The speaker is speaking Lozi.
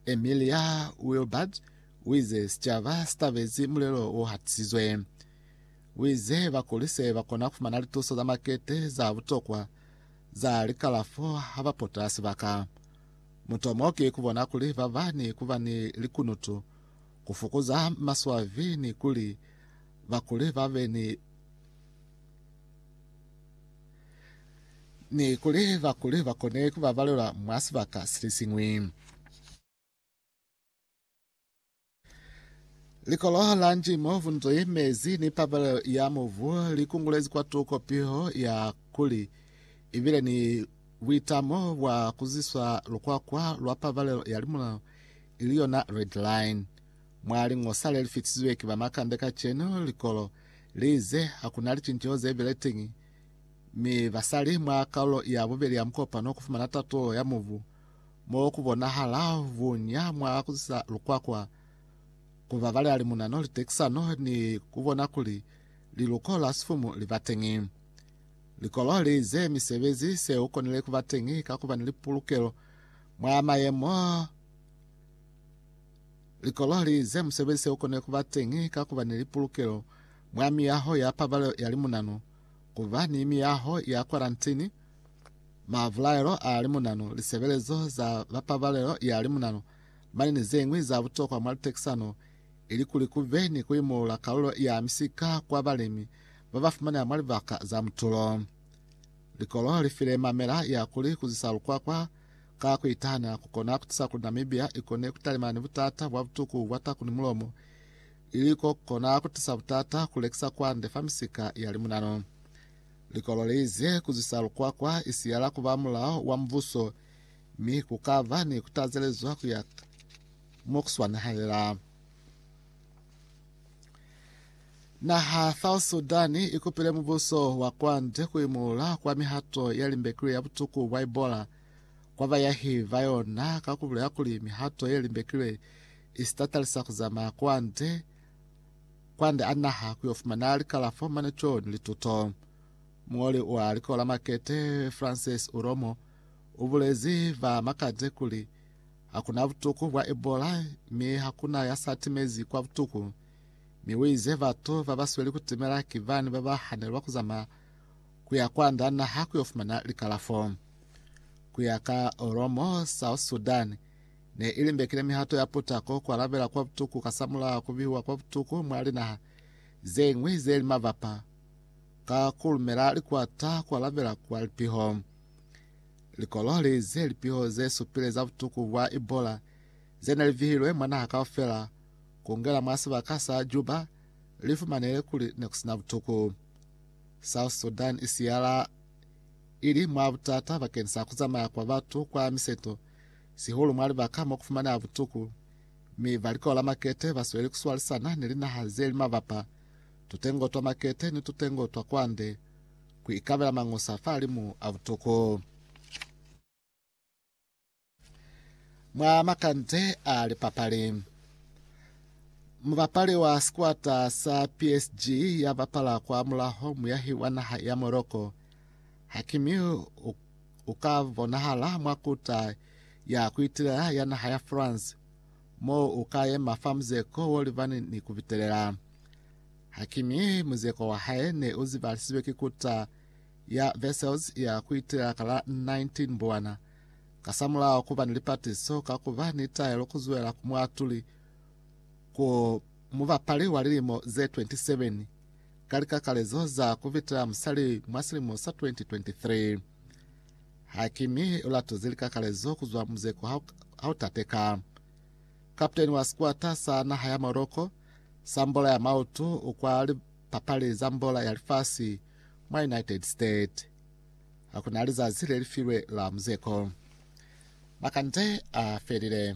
Emilia Wilbert uize, Sicaba sitabezi mulelo o hatisizwe. Uize bakulise bakona kufumana lituso za makete za butokwa za likalafo habapota sibaka. Mutomo ki kubona kuli baba ni kuba ni likunutu, kufukuza maswabi ni kuli bakuli babe ni ni kuli bakuli ba kone ku ba balelwa mwa sibaka si li siñwi. Likolo la Njimo, Vunzwi, Mezi ni Pabalelo ya Mubu li kungulezi kwatuko piho ya kuli i bile ni buitamo bwa ku ziswa lukwakwa lwa pabalelo ya limulao, ili yona Red Line. Mwa liñosa le li fitisizwe ki ba makande kacenu, likolo Li ize, Ha ku na licinceho ze bile teñi, mi basali mwa kalulo ya bubeli ya mukopano ku fumana tato ya mubu, mo ku bonahala buña mwa ku zisa lukwakwa, ku babalela limunano, litekisano, ni ku bona kuli liluko la sifumu li ba teñi. Likolo li ize, Misebezi se u konile ku ba teñi ka ku ba ni lipulukelo mwa mayemo Likololi ze musebezi se u kone ku ba teñi ka ku ba ni lipulukelo mwa miyaho ya pabalelo ya limunanu, ku ba ni miyaho ya kwarantini, mavulaelo a limunanu, lisebelezo za ba pabalelo ya limunanu, mane ni ze ñwi za butokwa mwa litekisano, ili kuli ku be ni ku imulula kalulo ya misika kwa balemi ba ba fumaneha mwa libaka za mutulo. Likolo li file mamela ya kuli ku zwisa lukwakwa Ka ku itahanya ku kona ku tusa kuli Namibia i kone ku talimana ni butata bwa butuku bwa taku ni mulomo, ili ko ku kona ku tusa butata ku lekisa kwande fa misika ya limunano. Likolo li ize, Ku zwisa lukwakwa i siyala ku ba mulao wa mubuso, mi ku ka ba ni ku tazelezwa ku ya mo ku swanehalela. Naha South Sudan i kupile mubuso wa kwande ku imuula kwa mihato ya limbekile ya butuku bwa Ebola. kwa bayahi ba yona ka ku bulela kuli mihato ye limbekilwe i si tatalisa ku zamaya kwande kwande a naha ku yo fumana likalafo mane co ni lituto. Muñoli wa Likola la Makete Frances Uromo u bulezi ba Makate kuli ha ku na butuku bwa Ebola mi ha ku na ya sa timezi kwa butuku, mi u ize batu ba ba sweli ku timela ki bani ba ba hanelwa ku zamaya ku ya kwa nda naha ku yo fumana likalafo. Ku ya ka Oromo, South Sudan ne i limbekile mihato ya putako ku alabela kwa butuku kasamulaho ku bihiwa kwa butuku mwa linaha ze ñwi ze li mabapa ka ku lumela likwata ku alabela kwa lipiho. Likolo li ize lipiho ze supile za butuku bwa Ebola ze ne li vihilwe mwa naha kaufela ku ngela mwa sibaka sa Juba li fumanehile kuli ne ku sina butuku. South Sudan i siyala i li mwa butata bakeni sa ku zamaya kwa batu kwa miseto, sihulu mwa libaka mo ku fumaneha butuku, mi ba likolo la makete ba sweli ku swalisana ni linaha ze li mabapa, tutengo twa makete ni tutengo twa kwande, ku ikabela mangusa fa limu a butuku. Mwa makanze a lipapali, mubapali wa sikwata sa PSG ya bapala kwa mulaho muyahi wa naha ya Morocco, Hakimi u, u ka bonahala mwa kuta ya kuitelela ya naha ya France, moo u ka yema fa muzeko wo libani ni ku bitelela. Hakimi muzeko wa hae ne u zibalisizwe ki kuta ya Vessels ya kuitela ka la 19 Mbuwana. Kasamulaho kuba ni lipatiso ka kuba ni taelo kuzwela ku muatuli ku mubapali wa lilimo ze 27 ka likakalezo za kuvitela musali mwa silimo sa 2023. Hakimi ulatoze likakalezo kuzwa muzeko hautateka. Kaputeni wa sikwata sa naha ya Morocco sa mbola ya mautu kwa lipapali za mbola ya lifasi Mwa United States, ha ku na lizazi le li filwe la muzeko. Makande a felile.